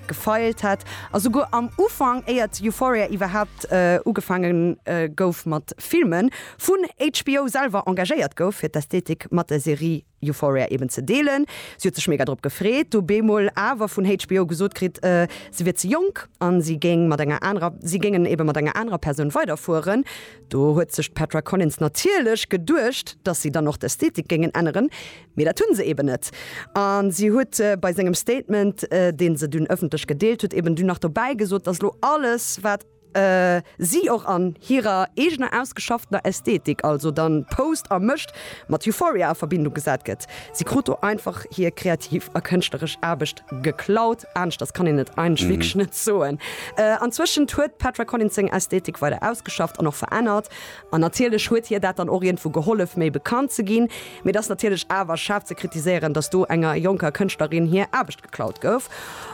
gefeilt hätt a souguer am Ufank, éiert Euphoria iwwerhaapt ugefaange gouf mat filmen, vun HBO selwer engagéiert gouf, fir d'Ästhetik mat der Serie Euphoria eben ze deelen. Si huet sech mega drop gefreet, du bemol awer vun HBO gesot kritt, se wier ze jonk a si géing mat enger anerer, si géingen eben mat enger anerer Persoun weiderfueren. Do huet sech d'Petra Collins natierlech geduecht, dass si dann och d'Ästhetik géingen änneren, Mee dat hunn se eben net. A si huet bei sengem Statement, deen se dunn ëffentlech gedeelt huet, eben dunn nach dobäi gesot, dass elo alles, wat si och an hirer eegener ausgeschafftener Ästhetik, also dann post a mécht, mat Euphoria a Verbindung gesat gëtt. Si krut do einfach hir kreativ a kënschtleresch Aarbecht geklaut. Aneschters kann een et eigentlech wierklech net soen. Anzwëschent huet d'Petra Collins seng Ästhetik weider ausgeschafft an och verännert. An natierlech huet hir dat dann och iergendwou gehollef, méi bekannt ze ginn. Mee et ass natierlech awer schaarf ze kritiséieren, datt do enger jonker Kënschtlerin hir Aarbecht geklaut gouf.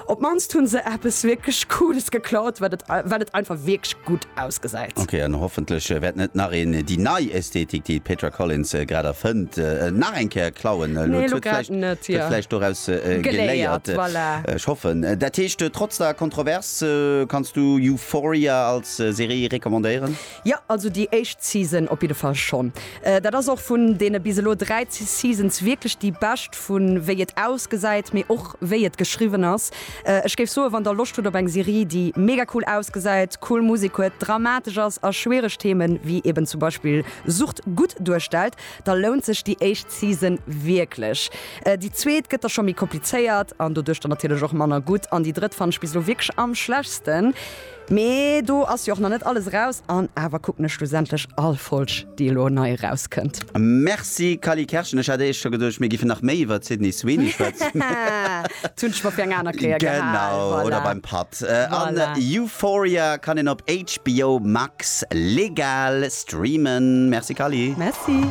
Op d'mannst hu se eppes wierklech Cooles geklaut, well et, well et einfach wierklech gutt ausgesäit. Ok, an hoffentlech wäert net nach een déi nei Ästhetik, déi d'Petra Collins grad erfënnt, nach eng Kéier klauen. Nee, elo grad net. Huet vläicht doraus geléiert. Ech hoffen. Dat heescht, trotz der Kontrovers, kanns du Euphoria als Serie recommandéieren? Jo, also déi éischt Season op jidde Fall schonn. Dat ass och vun deene bis elo dräi Seasons wierklech déi bescht, vu wéi et ausgesäit, mee och wéi et geschriwwen ass. Ech géif soen, wann der Loscht hutt op eng Serie, déi mega cool ausgesäit, cool Musek huet, dramatesch ass a schwiereg Themen, wéi eben zum Beispill Sucht, gutt duerstellt, da lount sech déi éischt Season wierklech. Déi zweet gëtt da scho méi komplizéiert an doduerch dann natierlech och manner gutt an déi drëtt fannen ech bis elo wierklech am schlechtsten. Mee do ass jo och nach net alles eraus an awer kucken ech schlussendlech all Folg déi elo nei eraus kënnt. Merci Kally Kerschen, ech hat éischt scho geduecht mir giffen nach méi iwwert Sydney Sweeney schwätzen. Dat hunn ech mer fir eng aner Kéier gehal. Genau, oder beim Patt. An Euphoria kann een op HBO Max legal streamen. Merci Kally. Merci.